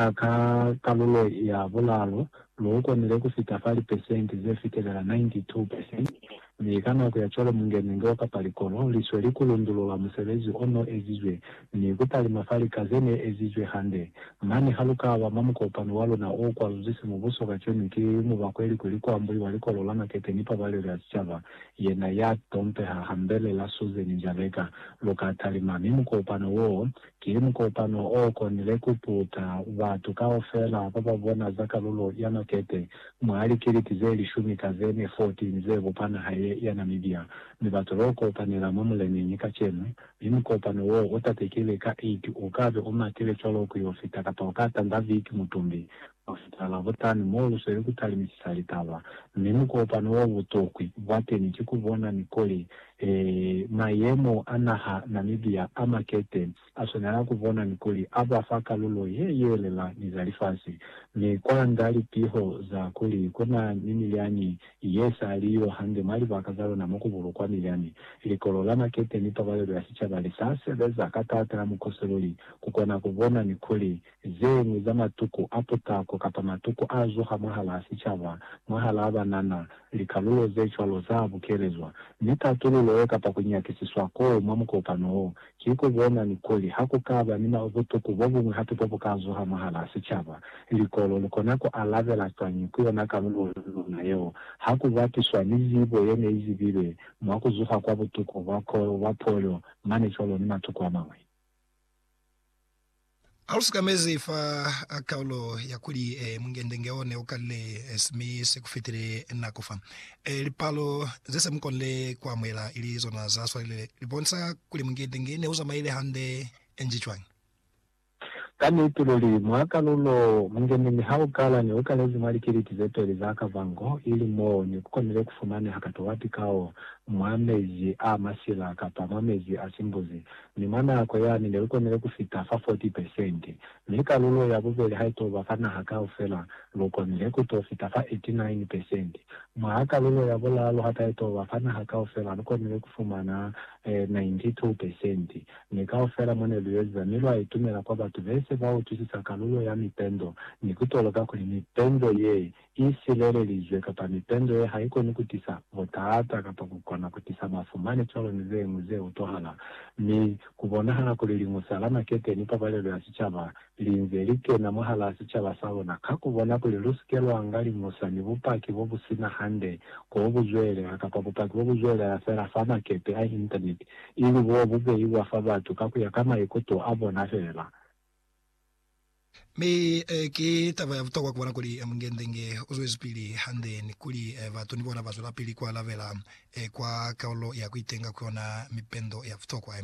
A Ka kalulo ya bulaalu, lu ukonile ku fita fa lipesenti ze fitelela 92 percent, mi ka nako ya cwalo mungenenge wa kapa likolo li sweli ku lundulula musebezi o n'o ezizwe ni ku talima fa lika ze n'e ezizwe hande. Mane ha lu ka ba mwa mukopano wa luna o kwaluzwi simubuso kacwenu ki mubakweli kuli ku ambuiwa Likolo la Makete ni Pabalelo ya Sicaba, yena ya tompeha hambel'e la Susan Njabeka, lu ka talima, mi mukopano w'o Ki mukopano o konile ku puta batu kaufela ba ba bona za kalulo ya makete mwa likiliti ze lishumi ka ze ne 14 ze bupa naha ye ya Namibia, mi batu lo kopanela mwa muleneñi kacenu. Mi mukopano wo u tatekile ka 8 u kabe u matile cwalo ku yo fita kapa u ka tanda viki mutumbi Masipala ku tani mo lu sweli ku talimisisa litaba, mi mukopano wa butokwi bwa teni ki ku bona ni kuli, ee, mayemo a naha Namibia a makete a swanela ku bona ni kuli a ba fa kalulo ye yelela ni za lifasi. Mi kwa nda lipiho za kuli ku na ni milyani ye sa li yo hande mwa libaka za luna mo ku bulukwa milyani. Likolo la makete ni pabalelo ya sicaba li sa sebeza ka taata la mukosi luli ku kona ku bona ni kuli zeñwi za matuku a putako kapa matuku a zuha mwahalaa sicaba, mwahalaa banana, likalulo ze cwalo za bukelezwa. Mi tatululo ye kapa ku nyakisiswa koo mwa mukopano wo, ki ku bona ni kuli ha ku ka ba ni butuku bo buñwi hape bo bu ka zuha mwahalaa sicaba. Likolo li kona ku alabela cwañi ku yona kalulo ya luna yeo ha ku bapiswa ni zibo ye ne i zibilwe mwa ku zuha kwa butuku bwa koo, bwa polio, mane cwalo ni matuku a mañwi? Ha lu sikamezi fa kaulo ya kuli Mungendenge o ne u kalile simi se ku fitile nako fa lipalo ze se mu konile ku amuhela ili zona za swalile, li bonisa kuli Mungendenge ne u zamaile hande nji cwañi? Ka niti luli, mwa kalulo, Mungendenge ha u kala ne u kalezi mwa likiliti ze peli za kavango, ili mo ne ku konile ku fumaneha katowati kao mwa mezi a masila kapa mwa mezi a simbuzi. Mi mwa nako yani ne lu konile ku fita fa 40 pesente, mi kalulo ya bubeli ha ito ba fa naha kaufela, lu konile ku to fita fa 89 pesente. Mwa kalulo ya bulalu ha ta ito ba fa naha kaufela, lu konile ku fumana 92 pesente. Mi kaufela mo ne lu yoziza mi lwa itumela kwa batu be se ba utwisisa kalulo ya mipendo ni ku toloka kuli mipendo ye i silelelizwe kapa mipendo ye haikoni kutisa butaata kapa kukona kutisa mafu mane cwalo ni zeñwi ze utwahala, mi kubonahala kuli Liñusa la Makete ni Pabalelo ya Sicaba linze likena mwahalaa sicaba saluna ka kubona kuli lusike lwanga Liñusa ni bupaki bobusina hande ko buzwelela kapa bupaki bobuzwelela fela fa makete a Intaneti ili bo bubeiwa fa batu ka kuya ka maikuto abona fela. Mi ki taba ya butokwa kubona kuli Mungendenge uzwezipili hande ni kuli batu ni bona bazwelapili kualabela kwa kalulo ya kuitenga ku yona mipendo ya butokwa.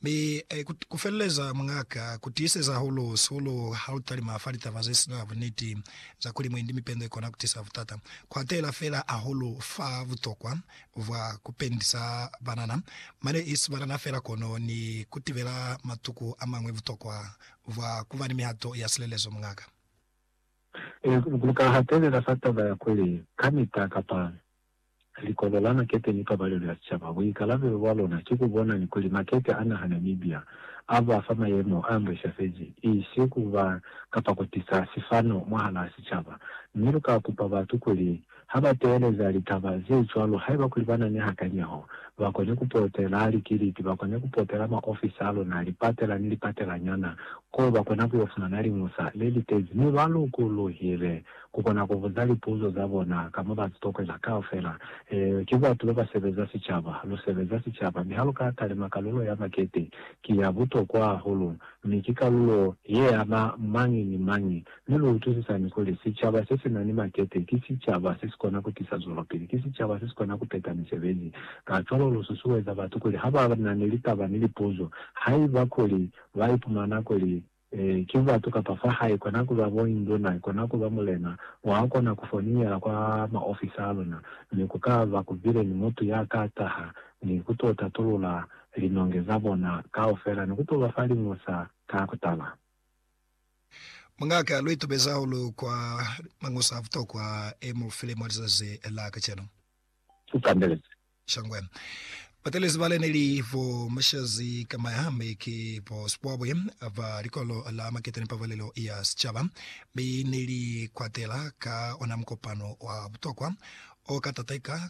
Mi kufeleleza muñaka, kutiiseza hahulu sihulu halutalima fa litaba zesina buniti za kuli mwendi mipendo ikona kutisa butata, kuatela feela hahulu fa butokwa vwa ku pendisa banana mane isi banana fela kono ni ku tibela matuku a mañwi butokwa bwa ku ba ni mihato ya silelezo. Muñaka. Ee, lu ka hatelela fa taba ya kuli kamita kapa likolo la makete ni pabalelo ya sicaba, buikalabelo bwa lona ki ku bona ni kuli makete a naha Namibia a ba fa mayemo a mbwishafezi, isi ku ba kapa ku tisa sifano mwahalaa sicaba. Mi lu ka kupa batu kuli Ha ba teeleza litaba ze cwalo, haiba kuli ba na ni hakanyeho, ba koni ku potela likiliti, ba koni ku potela maofisi a luna, lipatela ni lipatelanyana, koo ba kona ku yo fumana liñusa le li tezi. Mi ba lukuluhile ku kona ku buza lipuzo za bona ka mwa ba sitokwela kaufela. Eyo, ki batu ba ba sebeza sicaba. Lu sebeza sicaba. Mi ha lu ka talima kalulo ya makete, ki ya butokwa hahulu, mi ki kalulo ye ama mañi ni mañi Mi lu utwisisañi kuli, sicaba se si na ni makete ki sicaba se si kona ku tisa zwelopili, ki sicaba se si kona ku peta misebezi. Kacwalo lu susueza batu kuli ha ba na ni litaba ni lipuzo, haiba kuli ba ipumana kuli ki batu kapa fa hae, kona ku ba bo induna, kona ku ba mulena, wa kona ku foniela kwa maofisi a luna, mi ku ka ba ku bile ni mutu ya ka taha ni ku to tatulula linonge za bona kaufela ni ku to ba fa liñusa ka kutala. Mungake a lu itubezi hahulu kwa mañusa a butokwa e mu file mwa lizazi la kacenu. Ku kandelezi. Shangwe. Batelezi ba le ne li bo Mushazi Kamaya mi ki bo Sibwabwi ba likolo la Makete ni Pabalelo ya Sicaba, mi ne li kwatela ka ona mukopano wa butokwa o ka tateka